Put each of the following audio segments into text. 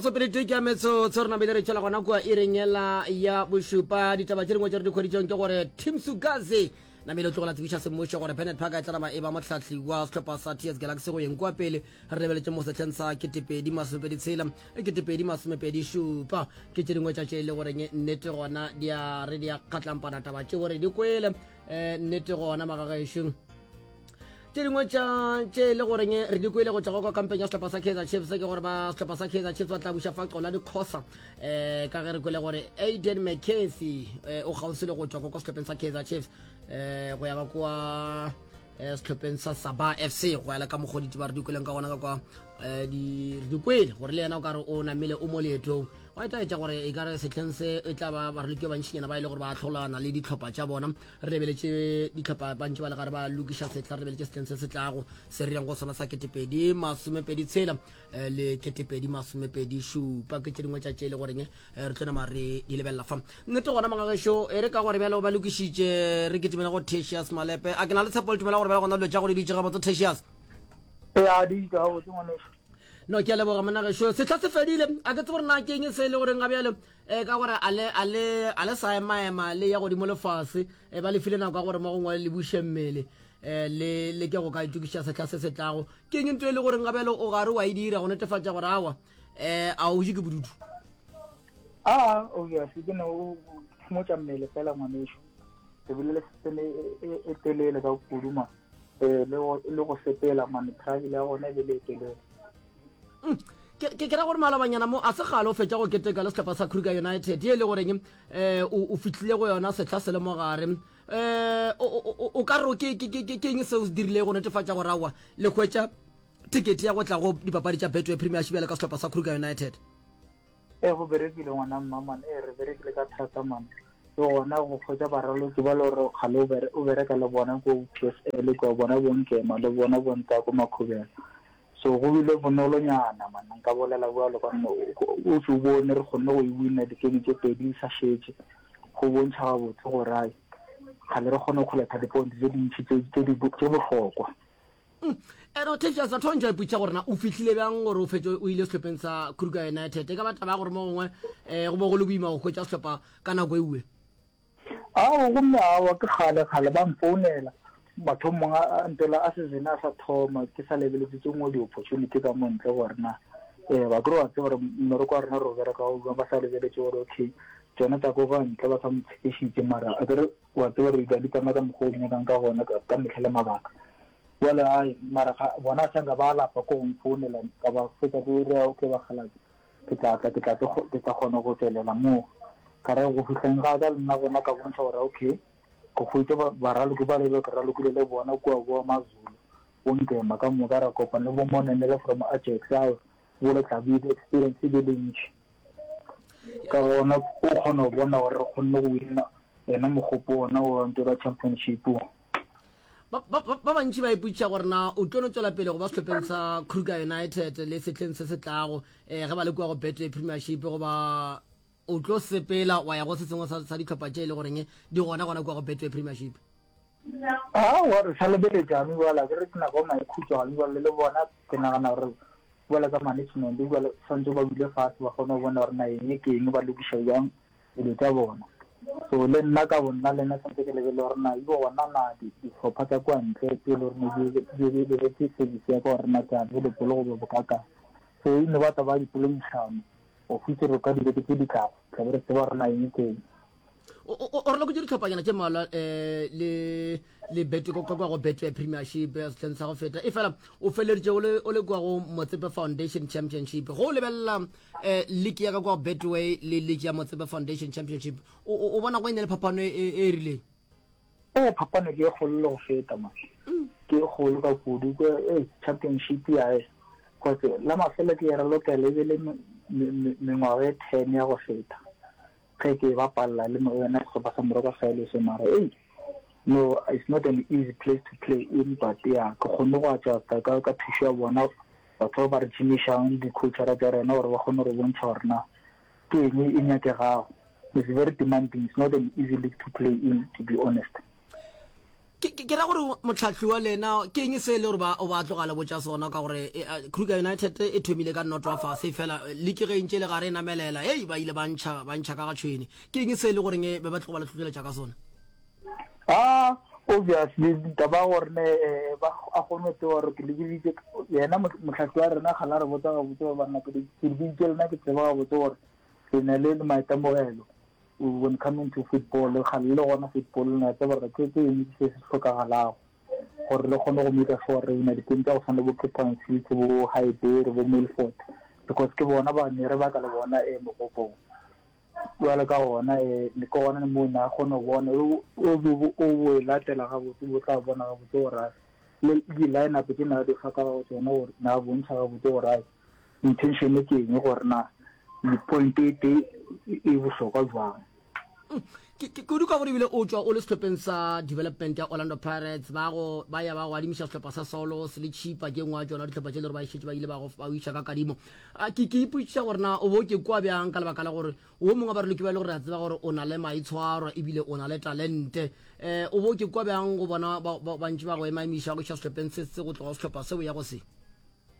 batsopele tui ke ametso tse re nabile re tšhela gona kua e rengela ya bošupa ditaba tše dingwe tše re dikgweditšong ke gore tim sugaze namele o tlogela tsebiša semmušo gore benet park e tlanama e ba motlhahli wa sehlopha sa ts galaxy go yeng kua pele re lebeletše mo setlheng sa ketepedi masomepedi tshela le ketepedi masomepedi šupa ke tše dingwe tša tše e le goreng nnete gona di a re di a kgatlampana taba tše gore di kwele um nnete gona magagaešo tše dingwe tša tše e le goreng re di kwele go tšwa kwa kampeng ya setlhopha sa kaizer chiefs ke gore ba setlhopha sa kaizer chiefs ba tla buša fa qola dikgosa um ka ge re kwele gore aiden mccarthy um o kgauswi le go tšwa kwa kwa setlhopheng sa kaizer chiefs um go ya ka kua eh, setlhopheng sa saba fc go yala ka mokgoditi ba re dikweleng ka gona ka kwa eh, dikwele gore le yena o kare o namele o mo leetong wa etaetsa gore e kare setlheng se e tla ba ba re loke bantšhinyana ba e le gore ba tlholana le ditlhopha tša bona re lebeletse ditlhopha bantši ba le gare ba lokiša setlha re lebeletse setlheng se se tlago se re yang go sona sa ketepedi masomepedi tshela eh, le ketepedi masomepedi šupa ke tše dingwe tša tše e le goreng Eh, re tlone mare di lebelela fa nnete gona mangagešo e re ka gore bjalo ba lokišitše re ketimela go tesius malepe a ke na le tshepo le tumela gore bjalo gona dilo tša go di ditše gabotse tesius no ke a leboga monagešo setlha se fedile a ke tse gore na ke eng se e le goreng ga bjalo um ka gore a le sa emaema le ya godimo lefase e ba lefile nako ya gore mo gongwe le buše mmele um le ke go ka itokiša setlha se se tlago ke eng nto e le goreng ga bjalo o gare wa e dira go netefatša gore awa eh a o je ke bodutu a ah, obviously ke ne o phomotsa mmele fela ngwaneso ke bile le setsene e, e, e telele ka kuduma eh, le go sepela mane travel ya gona e be le e telele mm, ke kera gore malabanyana mo a se gale o fetsa go keteka le setlhopha sa kruger united e le goreng um o fitlhile go yona setlha se le mo gare um o ka re ke eng se o se dirile go netefatsa gore aowa le kgwetsa Tikete ya go tla go dipapadi tša Betway Premiership bjale ka sehlopha sa Kruger United. E go berekile ngwana mmaman e re berekile ka thata man le gona go kgwetsa baraloki ba le gore kgale o bereka le bona ko psl kwa bona bonkema le bona bonta ko makhubela so go bile bonolonyana man nka bolela bjalo ka nne o se bone re kgonne go e winna dikeme tse pedi di sa šetse go bontšha gabotse gore ai kgale re kgone go kgoletha diponte tse dintšhi tse bohlokwa ere o thefša sa thontsha iputša gore na o fihlile bjang gore o fetše o ile sehlopeng sa kruger united e ka ba taba ya gore mo gongwe um go bo go le boima go hwetša sehlopha ka nako eue ao gomme awa ke kgale kgale ba mfounela mathomong a mpela a sesene a sa thoma ke sa lebeletse tse ngwe di-opportunity ka mo ntle gore na um ba kry wa tse gore mmereko wa rena re o bereka ba sa lebeletse gore okay tsone tsa ko ka ntle ba sa mo tshepišitse mara a kere O a tseba re tla di pama ka mokgwa o di nyakang ka gona ka, ka mehla le mabaka. Bjale a ye, mara ga, bona a tšanga ba alapa ko go nfounela, ka ba fetša ke re, Okay bakgalabje, ke tla tla, ke tla tlo, ke tla kgona go tšwelela moo. Ka re, go fihleng ga ka le nna gona ka bontšha gore okay, go hwetša ba, baraloki bale bjo ke ralokile le bona kua go ba Mazulu, bo Ngema ka moka, ra kopana le bo Monenele from Ajax, ao, bjale tla be e be experience e be le ntši. Ka gona o kgona go bona gore re kgonne go wina yena mogopo ona wa Ntola Championship. Ba bantši ba ipotšiša gore na o tlo no tswela pele go ba sehlopeng sa Kruger United le sehleng se se tlago um eh, ge ba le kua go Betway Premiership goba o tlo sepela wa ya go se sengwe sa dihlopha tše e le goreng di gona gona kua go Betway Premiership. Aowa, re sa lebeletšane bjale, a ke re ke nako ya maikhutšo gane bjale, le bona ke nagana gore bjale ka management bjale swanetše ba dule fase ba kgone go bona gore na eng ke eng, ba lokiša bjang dilo tša bona. So le nna ka bonna le nna swanetše ke lebelele gore na ebe gona na dihlopha tša kwa ntle tše e le gore di lebeletse service ya ka gore na ke a available goba bokaakang. So e no ba taba ya dipoledišano go fihla re kwa dibeke tše di tlago, tla be re tseba gore na eng ke eng. o re loketše ditlhophanyana tše mmalwa um eh, le le bet kwa go betway premiership ya sehleng sa go feta e fela o feleleditše o le kwa go motsepe foundation championship go lebelela um eh, league ya ka kwa go betway le league ya motsepe foundation championship o bona go e ne le phapano e, e, e rileng ee phapano ke e kgolo le go feta ma mm. ke e kgolo ka kudu eh, championship yae kotse la mafelo ke e re lokela e be le mengwaga e ten ya go feta Ge ke ba palla le yona sehlopha sa Moroko sa Eloso mara ei no it's not an easy place to play in but ya ke kgonne go adjusta ka ka thušo ya bona batho ba ba re tšhimišang di-coachara tša rena gore ba kgone go re bontšha gore na ke eng e nyakegago it's very demanding it's not an easy league to play in to be honest Ke, ke, ke ra gore motlhahliwa le ena ke eng se e le gore ba o ba tlogale botša sona ka gore e, a, Kruger United e thomile ka noto a fase fela liki ge e ntše e le gare e namelela hei ba ile ba ntšha ba ntšha ka ga tšhwene ke eng se e le goreng e be ba tloga ba le tlogeletša ka sona Ah, obviously taba gore ne eh, ba a kgone tse gore ke lebiditse yena motlhahli wa rena ga la re botsa ga botse ba banna ke lebiditse lena ke tseba ga botse gore ke ne le le maitemogelo when coming to football, kgale le gona football le na tseba gore ke ke eng se se tlhokagalago gore le kgone go maker sure gore re na dikeng tsa go tshwana le bo Cape Town City bo Highbury bo Milford because ke bona ba ne re baka le bona e mogopong jwale ka gona e le ke gona mo na kgone go bona o o e latela ga botse bo tla bona ga botse gore le di line up ke na di fa ka tsone gore na bontšha ga botse gore Intention ke eng gore na le point e tee e bohlokwa jwang? Ke ke kudu ka gore ebile o tšwa o le sehlopeng sa development ya Orlando Pirates ba go ba ya ba go adimiša sehlopha sa Saulos le Chipa ke ngwa tšona dihlopha tše le gore ba išetše ba ile ba go ba iša ka kadimo a ke ke ipotšiša gore na o bo ke kwa bjang ka lebaka la gore wo mongwe ba re loke ba ile gore a tseba gore o na le maitshwaro ebile o na le talente eh o bo ke kwa bjang go bona ba bantši ba go ema emiša go iša sehlopeng se se go tloga sehlopha seo ya go se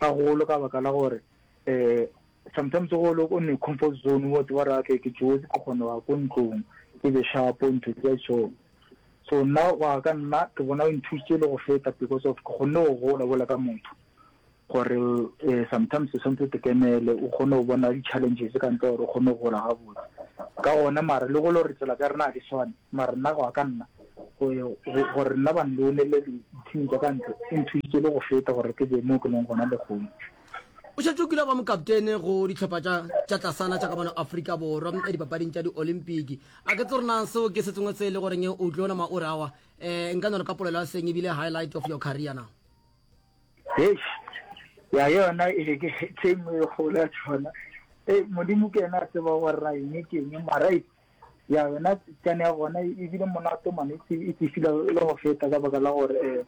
Gagolo ka baka la gore um sometimes go le o ne comfort zone wa tseba ra ke ke jewetse ke kgone wa ko ntlong ke be shapo ntho tse so so nna wa ka nna ke bona o nthusitse le go feta because of ke kgonne go gola bola ka motho gore um sometimes o tshwanetse te kemele o kgone go bona di-challenges ka ntle gore o kgone go gola gabotse ka gona mara le go le gore tsela tsa rena ga di swane mara nna go ya ka nna gore nna ba nloolele dithing tsa ka ntle e nthusitse le go feta gore ke be mo ke leng gona lekgong O šetše o kile ba mokaptene go dihlopha tša tša tlasana tša ka mona Afrika Borwa eh, dipapading tša di-olimpiki. A ke tsore na seo ke se sengwe se e le goreng o tlo nama o rawa eh, nka no re ka polelo ya seng ebile highlight of your career na? Eish, ya yona e be ke tse nngwe e kgolo ya tšona. Eh, Modimo ke ena a tseba gore ra eng ke eng mara ya yona tsane ya gona e bile monate mane e tsefile le go feta ka baka la gore um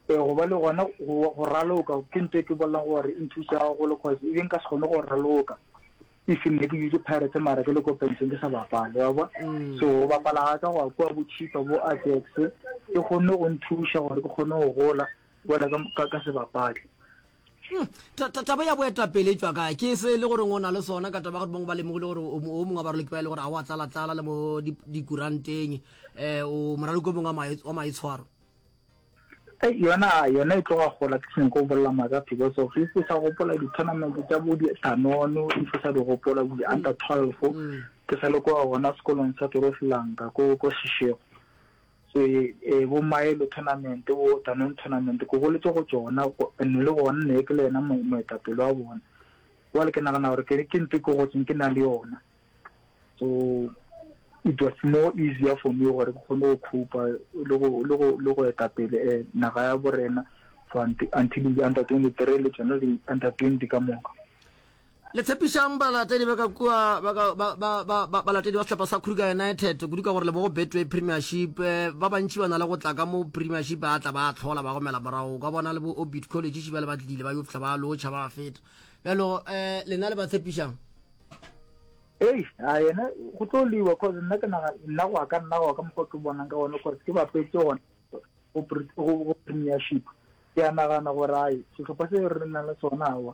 e go ba le gona go raloka ke nto e ke bolelang gore e nthusa gagolo cause e beng ka se kgone go raloka if nne ke dutse pirates mara ke le ko penseng ke sa bapale wa bo mm. so go bapala ga ka go a kua bo chipa bo ajax ke kgonne go nthusa gore ke kgone go gola bola ka se bapale Hmm, taba ya boetapele e tšwa kae ke se e le goreng o na le sona ka taba gore bangwe ba lemogile gore o mongwe wa baraloki ba e le gore a o a tlalatlala le mo dikuranteng um o moraloki o mongwe wa maitshwaro eh, yona yona e tloga gola ke seng ko bolela maaka because of if o sa gopola di-tournament tsa bo ditanono if o sa di gopola bo di-under twelve mm. ke sa le kwa gona sekolong sa torofilanka ko seshego Se e bo Maelo Tournament bo Danone Tournament ke goletše go tšona and le gona ne ke le yena moetapele wa bona jwale ke nagana gore ke ke ntho ke gotseng ke na le yona so it was more easier for me gore ke kgone go khupa le go le go le go etapele eh, naga ya borena for until under 23 le tsona di under 20 ka moka Le tshepišang balatedi ba ka kua ba ka ba ba ba ba balatedi ba sehlopha sa Kruger United kudu ka gore le bo go Betway Premiership eh, ba bantši ba na le go tla ka mo Premiership ba tla ba tlhola ba gomela morago ka bona le bo Orbit College šiba le ba tlile ba yo fihla ba lotšha ba feta bjalo eh lena le ba tshepišang ei a yena go tlo liwa cause nna ke naga nna go ka nna go ka mokgwa ke bonang ka gone cause ke ba petse gone go Premiership ke a nagana gore ai sehlopha se re nang le sona awa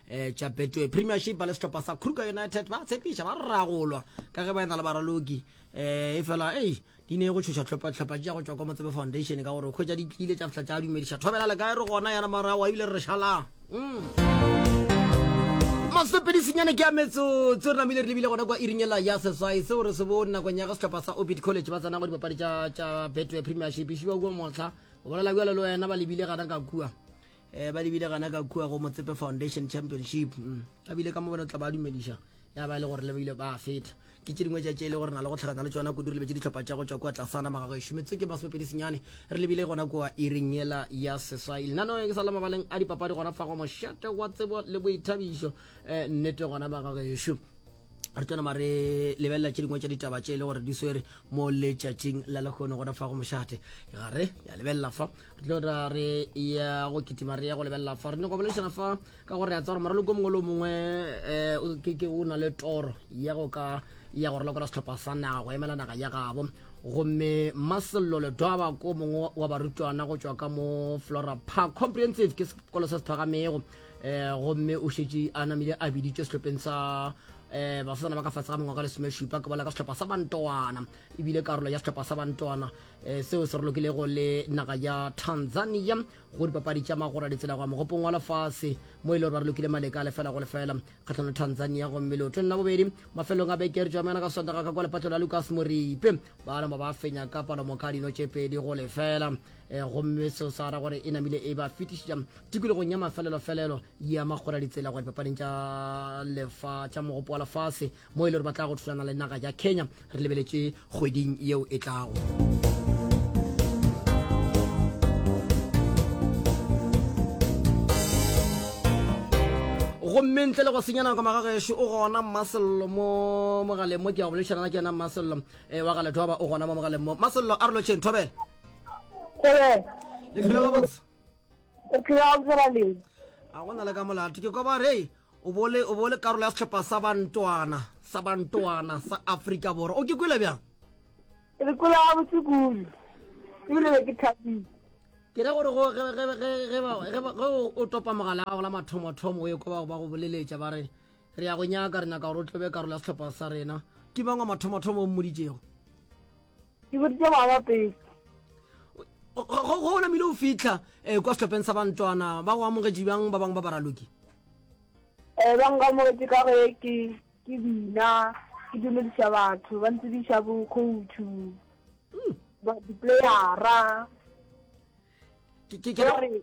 eh tša betway premiership ba le sehlopha sa kruger united ba tshepiša ba ragolwa ka ge ba ena le baraloki eh e fela ei di ne go tšhoša tlhopha tša go tšwa kwa motsebe foundation ka gore kgwetša di tlile tša fihla tša dumediša thobela le kae re gona yana morago ebile re šalang mm. masepedisinyane ke a metsotso re namile re lebile gona kwa iringela ya seswai seo re se bone nakong ya ga setlhopha sa obit college ba tsena go dipapadi tša betway premiership e šiwa kua motlha o bolela bjalo le wena ba lebile gana ka kua eh ba lebile gana ka kua go motsepe foundation championship mm. ba bile ka mo bona tla ba dumediša ya ba e le gore le bile ba feta ke tše dingwe tša tše e le gore na le go tlhakana le tsona kudu re lebetse ditlhopha tša go tšwa kua tlasana magago e šometse ke basomepedi senyane re lebile gona kua iring yela ya seswa e lenano ke sa le mabaleng a dipapadi gona fa go mošate wa tsebo le boithabišo um nnete gona magago ešo re tlo nama re lebelela tše dingwe tša ditaba tše e le gore di swere mo letšatšing la lekgono gona fa go mošate ga re ya lebelela fa re tlo ra re ya go kitima re ya go lebelela fa re nyako boledišana fa ka gore ya tsa gore maroloko mongwe le mongwe um ke o na le toro ya go ka ya go rolokola setlhopha sa naga go emela naga ya gabo gomme masello ledwaba ko mongwe wa barutwana go tšwa ka mo flora park comprehensive ke sekolo se se phagamego um gomme o šetše a namile a biditše sehlopheng sa um basetsana ba ka fatshe ga mengwaga le somešupa ke bola ka sehlopha sa bantoana ebile karolo ya sehlopha sa bantoana um seo se re lokilego le naga ya tanzania go dipapadi tša magora ditsela goa mogopong wa lefase mo e le gore ba re lokile maleka a lefela go lefela kgatlhano tanzania gomme leo 20 bobedi mafelong a beke re tšamana ka sondaga ka kwa lepatlo la lucas moripe ba nama ba fenya ka palomoka dino tše pedi go lefela Eh, gomme seo sa ra gore e namile e ba fetišitša tikologong ya mafelelofelelo ya makgora ditsela gore papading tša lefa tša mogopo wa lefase mo e le gore ba tla go thulana le naga ya kenya re lebeletše kgweding yeo e tlago gomme ntle le go senya nako magagešo o gona mmasello mo mogaleng mo ke ya go boledišana ke yena mmasello um eh, wa ga ledwaba o gona mo mogaleng mo mmasello a re lotšheng thobela le dira gabotse o tlira go dira le a go na le ka molato ke koba re o bole o bole karolo ya setlhopha sa bantwana sa bantwana sa Afrika Borwa o ke kwile bjang re kwile ga botse kudu ebile be ke thabile ke re gore ge o topa mogala gago la mathomothomo o ye ko bago ba go boleletša ba re re ya go nyaka re nyaka gore o tlobe karolo ya setlhopha sa rena ke mang wa mathomothomo o mmoditšego ke boditse ngwaga wa pele go o namile o fitlha um kwa setlhopheng sa bantwana ba go amogetše bjang ba bangwe ba baraloki um ba nkamogetše ka ge ke ke bina ke dumediša batho ba ntsebiša bo coachu hmm. diplayera gore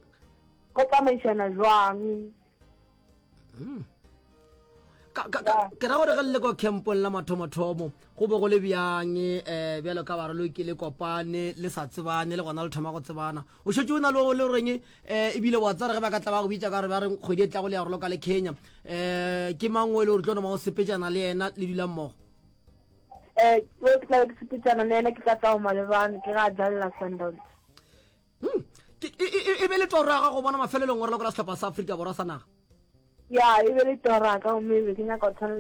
go tsamaišana jwang hmm. ke ra gore ge le le kwa campong la mathomothomo go be go le bjang um bjalo ka barelo ke le kopane le sa tsebane le gona le thoma go tsebana o šetse o na le le goreng um eh, ebile wa tsare ge ba ka tla ba go bitsa ka re ba re kgwedi e tlago le ya go loka le kenya um ke mang o e le gore tlo noma o sepejana le ena le dula mmogo um ke tla sepejana le ena ke tla tao malebane ke ga jalela sundowns Hmm. E be le toro ya gago bona mafelelong ngorela kora setlhopha sa aforika borwa sa naga ya e be le tora ka gomme ebe ke nyaka go tshwana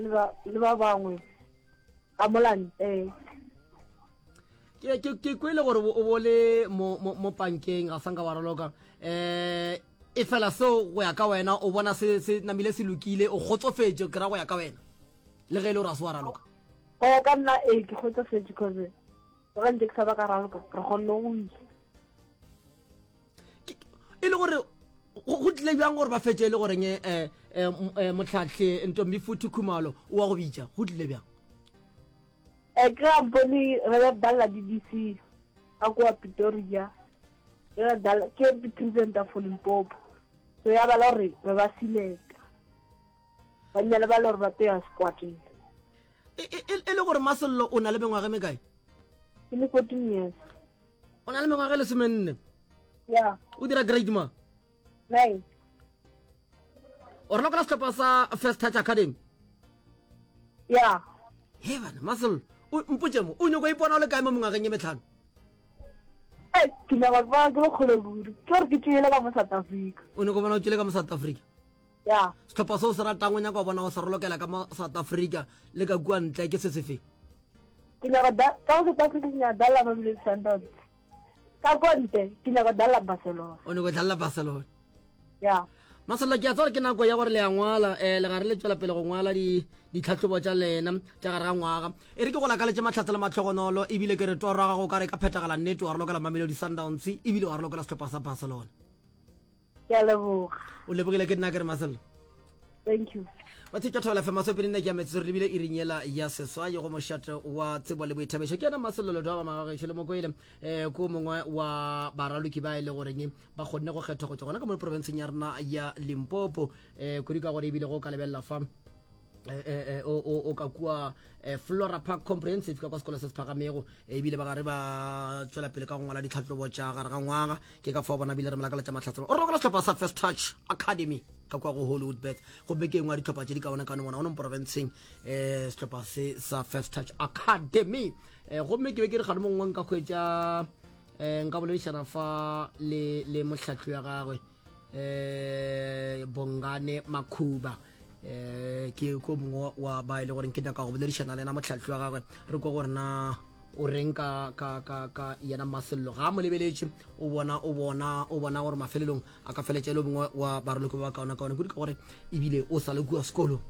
le ba bangwe ka molanteng ke kwele gore o bo le mo pankeng ga sanka wa raloka um eh, e fela seo go ya ka wena o bona se namile se lokile o kgotsofetše kry go ya ka wena le ge e le gore a se wa raloka go ya ka nna ee ke kgotsofetše cause Ga ntse ke sa ba ka ralka, re kgonne go isa. E le gore go tlile bjang gore ba fetse e le goreng eh, eh, eh, motlhatlhe ntombi futhi khumalo o wa go bitša go tlile bjang um ke ga bone re be balela di-dc ka kowa pitoria ke presenta for limpopo so ya bala gore re ba seleka ba nne le bale gore ba teya sekwateng E, e, e, e le gore masello o na le mengwaga mekae ke le fourteen years o na le mengwaga e lesomenne ya o dira grade ma nine o rena kona setlhopha sa first touch academy ya he bana masello mpotse mo o nyoko ipona o le kae mo mengwageng e metlhano ke nyaka ba ke le kgolo kudu ke gore ke tšele ka mo south africa o nyoko bona o tšele ka mo south africa ya sehlopha se o se ratang o nyaka wa bona o se rolokela ka mo south africa le ka kua ntle ke se sefe ke nyaka ka go south africa ke nyaka dalla mamelodi sundowns ka kua ntle ke nyaka dalla barcelona o nyako dalla barcelona ya masolo ke a tsore ke nako ya gore le ya ngwala um eh, legare le tswela pele go ngwala ditlhatlhobo tša lena tša gare ga ngwaga e re ke go lakaletse matlhatse le matlhogonolo ebile ke re toro gago ka re ka phethagala nnete wa re lokela mamelodi sundowns ebile wa re lokela setlhopha sa barcelona ke a leboga o lebogile ke nna ke re masello thank you ba tsheka thola fe maso pele nna ke ametse re lebile e rinyela ya seswa ye go mošate wa tsebo le boithabišo ke yena masololo doa ba magagešo le mokoele um ko mongwe wa baraloki ba e le goreng ba kgonne go kgethwa go tswa gona ka mo profenseng ya rena ya limpopo um kudu ka gore ebile go ka lebelela fa Eh, eh, eh, o ka kua flora park comprehensive ka kwa sekolo se se phagamego ebile ba gare ba tswela pele ka go ngwala ditlhatlobo tša gare ga ngwaga ke ka fao bona bile re molakaletša matlhatselo o rokola setlhopha sa first touch academy ka kwa go hollywood bet gobe ke engwe ya ditlhopha tše di kaone kano bona o neng porofenseng um setlhopha se sa first touch academy um gomme ke be ke re gane mongwe nka kgwetsa um nka boledišana fa le motlhatlho ya gagwe eh bongane makhuba eh ke ko mongwe wa ba ile e gore ke nyaka go boledišana le ena motlhatlhi wa gagwe re ko gore na o reng ka ka ka ka yena masello ga mo lebeletše o bona o bona o bona gore mafelelong a ka feletša le bongwe wa baroloko ba kaona kaona kudu ka gore ebile o sa le kua sekolo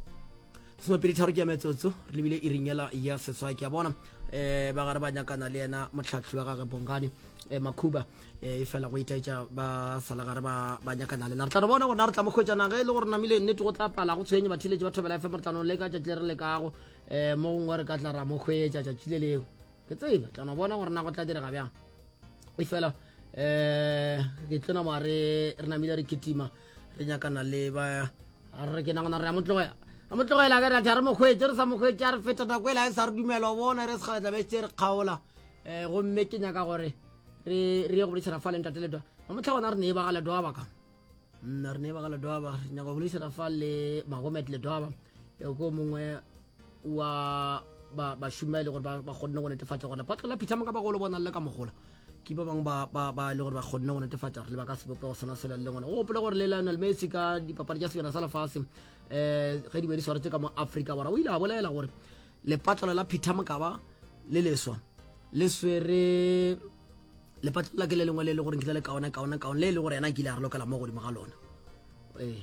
somapedi tharo ke ya metsotso re lebile e ringela ya seswa ke a bona um ba gare ba nyakana le yena motlhatlhi wa gage bongane um makhuba e fela go itaetša ba salagare ba ba nyakana lena re tla re bona gona re tla mo kgwetšana ge e le gore namile nnete go tla pala go tshwenye bathiletše ba thobela fm re tla no leka tšatši le re lekago um mo gongwe re ka tla ra mo kgwetša tšatši le leo ke tsebe tla no bona gore na go tla direga bjang e fela um ke tlona moa re namile re ketima re nyakana le ba re ke nagana re ya mo tlogela a mo tlogela ke ratha re mokgwetse re sa mokgwetse a re feta nako e la e sa re dumela o bona re sekgala tlabe se re kgaola um gomme ke nyaka gore re re ye go boledišana fa le ntate ledwa ba motlha gona re ne e ba ga ledwa baka nna mm, re ne ba ga ledwa ba re nyaka go boledišana fa le magomet ledwa ba ko mongwe wa ba ba shuma ile gore ba ba gonne go netefatsa gore ba tlola phitha moka ba go lo bona le ka mogola ke ba bang ba ba ba ile gore ba gonne go netefatsa gore le ba ka sebope go sona sela le ngone o gopola gore le Lionel Messi ka dipapadi tša sejana sa lefase eh ge di be di swaretse ka mo Africa bora o ile a bolela gore Lepatlelo la Peter Mokaba le leswa le swere lepatlelo la ke le lengwe le e le gore nkile le kaona kaona kaone le e le gore yena a kile a re lokela mo godimo ga lona ee